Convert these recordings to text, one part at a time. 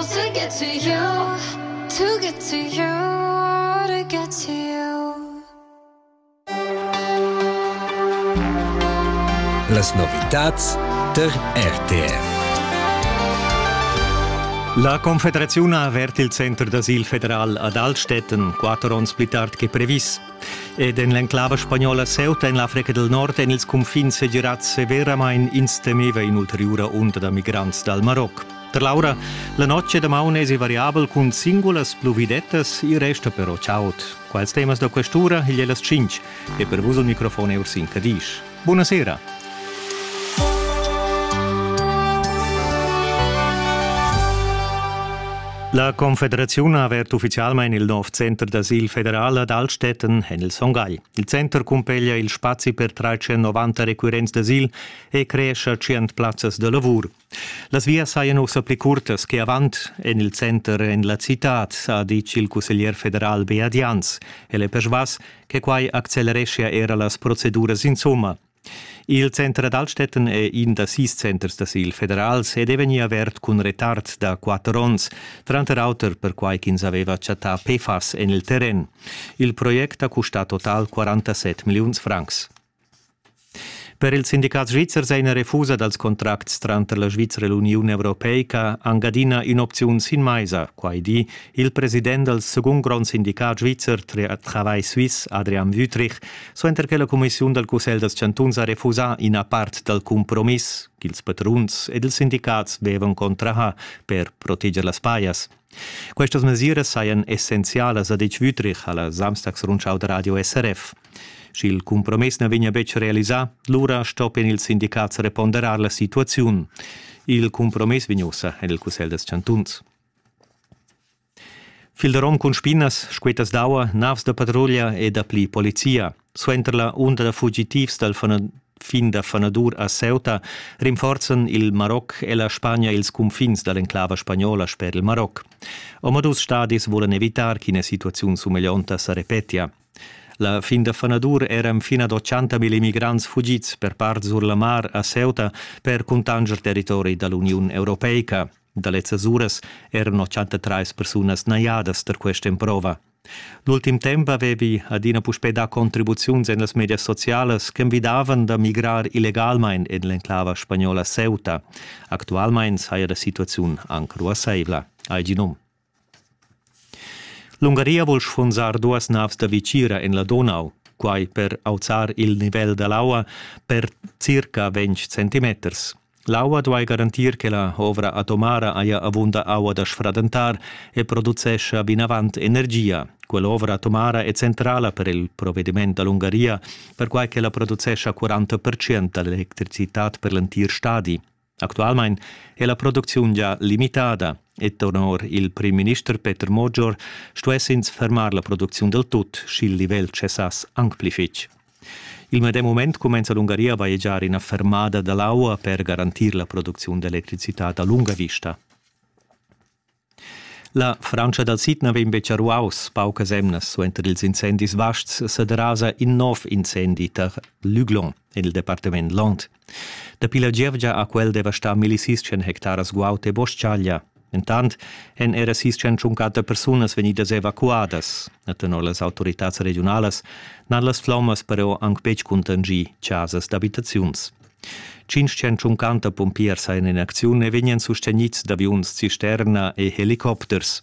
To get to you, to get to you, to get to you. Las novitats ter RTR. La Confederaziun ha avert il center d'asil federal ad Altstätten, quatter onns pli tard che previs. Ed en l'enclava spagnola Ceuta en l'Africa del Nord en ils confins segirats severamain ins temeva in'ulteriura onda da migrants dal Maroc. Per Laura, la notg damaun es variabel cun singulas pluvidettas, il resta però chaud. Quals temas da quest'ura igl è las 5 e per vus il microfon è Ursin Cadisch. Buonasera! La Confederaziun ha avert ufficialmain il nov center d'asil federal ad Altstätten en il Songhai. Il center cumpeglia il spazi per 390 requirents d'asil e creescha tschient plazzas da lavur. Las vias sajan ussa pli curtas che avant en il center en la citad, ha ditg il cusseglier federal Beat Jans. El è persvas che quai accelereschia era las proceduras insomma. Il center ad Altstetten è in da sis centers d'asil federals ed è vegnì avert cun retard da quatter onns, tranter auter perquai ch'ins aveva chattà PFAS en il terren. Il project ha custà total 47 milliuns francs. Per ils sindicats svizzers è ina refusa dals contracts tranter la Svizra e l'Uniun europeica anc adina in'opziun sin maisa, quai di il president dal segund grond sindicat svizzer Travail Suisse, Adrian Wüthrich, suenter che la cumissiun dal Cussegl dals chantuns ha refusà ina part dal cumpromiss ch'ils patruns ed ils sindicats vevan contrahà per proteger las pajas. Questas mesiras sajan essenzialas, ha detg Wüthrich alla Samstagsrundschau da radio SRF. Sch'il cumpromiss na vegnia betg realisà, lura stoppien ils sindicats reponderar la situaziun. Il cumpromiss vegn ussa en il Cussegl dels Chantuns. Fil de rom cun spinas, squetas d'aua, navs da patruglia e dapli polizia. Suenter la unda da fugitivs dal fin da fanadur a Ceuta rinforzan il Maroc e la Spagna ils cunfins da l'enclava spagnola sper il Maroc. Omadus stadis vulan evitar ch'ina situaziun sumeglionta sa repetia. La fin da fanadur eran fin ad 80.000 immigrants fugids per part sur la mar a Ceuta per cuntanger territori da l'Uniun Europeica. Da lezzas uras eran 83 persunas najadas tar questa emprova. L'ultim temp avevi adina puspè dà contribuziuns en las medias socialas ch'envidavan da migrar illegalmain en l'enclava spagnola Ceuta. Actualmain saja la situaziun anc ruassaivla, hai gì num. L'Ungaria vul sfunzar duas navs da vicira en la Donau, quai per auzar il nivel da l'aua per circa 20 centimeters. L'aua duai garantir che la ovra atomara haja avunda aua da sfradentar e producescha vinavant energia. Quell'ovra atomara è centrala per il provediment da l'Ungaria, perquai ch'ella producescha 40 da l'electricitad per l'entir stadi. Actualmain è la producziun già limitada e tenor il primminister Peter Mogior stuess ins fermar la producziun dal tut, sch'il livel cessass anc pli fitg. Il medem mument cumenza l'Ungaria a vaegiar ina fermada da l'aua per garantir la producziun d'electricitad a lunga vista. La Frantscha dal sid na vegn betg a ruaus paucas emnas suenter ils incendis vasts sa derasa in nov incendi tar Luglon en il departament Land. Dapi la gievgia ha quel devastà milli sis-chen hectaras guaud e bos-chaglia. Entant èn era sis-chen tschuncatta persunas vegnidas evacuadas. Er tenor las autoritads regiunalas n'han las flommas però anc betg cuntanschì chasas d'abitaziuns. Tschintschen tschuncanta pumpiers hajan en acziun e vegnan sustegnids d'aviuns cisterna e helicopters.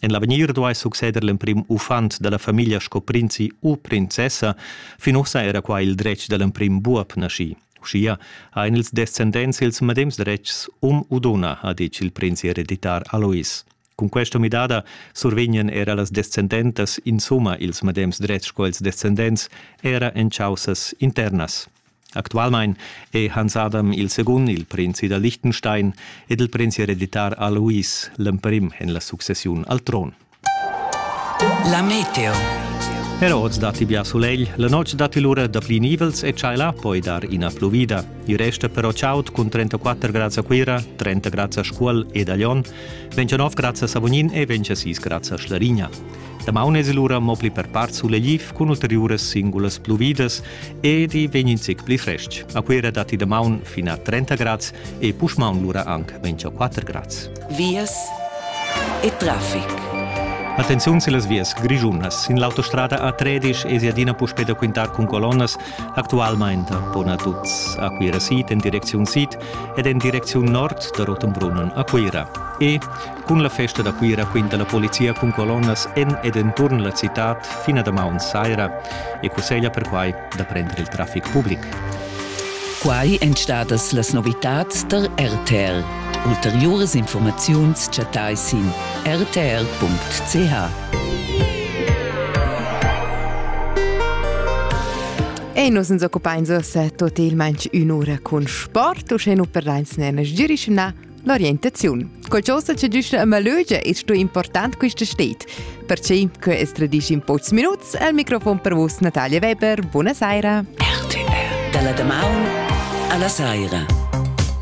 En l'avegnir duai succeder l'emprim uffant da la famiglia sco prinzi u princessa. Fin ussa era qua il dretg da l'emprim buob naschì. Uschia han ils descendents ils medems dretgs um u dunna, ha ditg il prinzi ereditar Alois. Cun questa midada survegnan era las descendentas insumma ils medems dretgs sco ils descendents, era en chaussas internas. Actualmein è Hans Adam il secund il prinzi da Liechtenstein ed il prinzi hereditar Alois l'emprim en la successiun al tron. La meteo. Era oz datti bia sulegl, la notg datti lura da pli nivels e tschaiला poi dar ina pluvida. Il resta però chaud cun 34 grads a Cuira, 30 grads a Scuol ed a Lyon, 29 grads a Savognin e 26 grads a Schlarigna. Damaun es lura mo pli per part sulegliv cun ulteriuras singulas pluvidas ed i vegn in zic pli frestg. A Cuera datti damaun fin a 30 grads e puschmaun lura anc 24 grads. Vias e traffic. Attenziun sillas vias grischunas. Sin l'autostrada A13 es adina puspè da quintar cun colonnas. Actualmain pon a tuts a Cuira Sid en direcziun sid ed en direcziun nord da Rotenbrunnen a Cuira. E Cun la festa da Cuira quinta la polizia cun colonnas en ed enturn la citad fin a damaun saira e cusseglia perquai da prender il traffic public. Quai èn stadas las novitads tar RTR. Ulteriuras informaziuns chattai sin rtr.ch. E nus ens occupains uossa tot il manch ün'ura cun sport, uschè nu perdains ne na sgirischna L'orientaziun. Qualcosa che giuscha a malögia e sto important questa stet. Perché che es tradisch in pocs minuts al microfon per vos Natalia Weber. Buonasera. RTL. Dalla damaun alla saira.